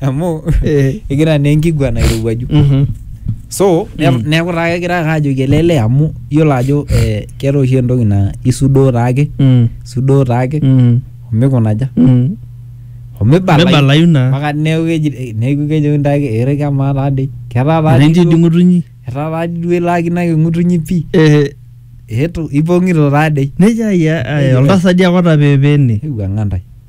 amu Eh. egira naa enkiguana airowuaju Mhm. so ne- Mm. neeku taa kegira ake ajoki ele lee amu iyiolo ajo eh, keeta oshi entoki naa isudoo taake Mm. isudoo taake Mm. omikunaja Mm. omibalayu Mibalayu naa. mpaka neeku keji neeku kejoki ntaake ere kemaa taadei ketaa taadei Erenji duo- ding'utunyi. etaa taadei duo ilaakino ake ng'utunyi pii Eh, eetu ipong'ito taadei nejia ayia, ayia, oltasadi ake otapeepeene. eiwuang'a ntae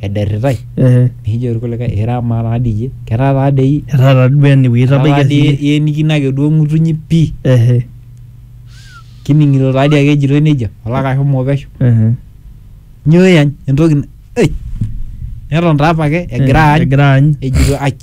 ederritai Ehe. nikijo irkulikae ira amaa taa dii iyie ketaa taa dei iyie Etaa taa duo ene wueji ketaa taa itabaikia dii siyie. ienikino ake duo ng'utunyi pii Ehe. kining'ito taa dii ake ejitoi nejia olaka ashomo pesho Ehe. nyoo iyany entoki na- ei neton taa apake egira aany Egira aany. ejito aij.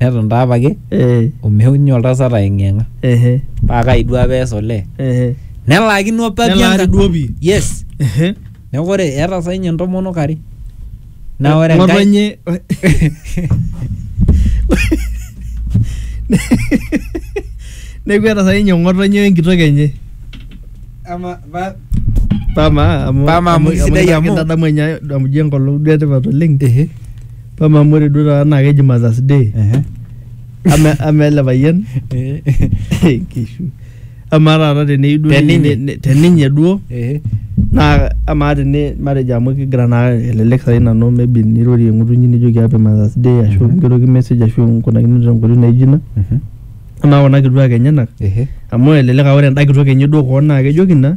Neton taa apake Eh. o meunyi oltasat aeng'ieng'a. Ehe. Paa kai duo apa ees olee? Ehe. Nelaakino apa pii Nelaari enkang'. duo pii. Yes. Ehe. Neeku ore eeta saa ninye intomonok are. Naa ore enkae Ng'otonye. Neeku eeta sai ninye ng'otonye we nkitok enye. Ama ba Pama amu Pama amu sidai amu- kitadamu enye amu ijo enkolong duo etipat oleng. Ehe. Mama amu ore duo taata naa keji Mother's Day. Ehe. Ama ama ele payian Eh, eh, kishu. Ama taata teneyieu duo Teninye. ninye- ne- teninye duo eh, naa amaa tene matejo amu kigira naa elelek sai nanu maybe nirorie ng'utunyi nijoki happy Mother's Day ashu Mhm. nigeroki message ashu nkunakino tenkoitoi naijo ina. mhm, Amaa kuna kituak enyenak ehe. amu elelek aa ore enda kitok enye duo koon naa kejoki ina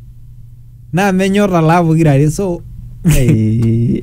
naa menyor talaa pokira are so Ai.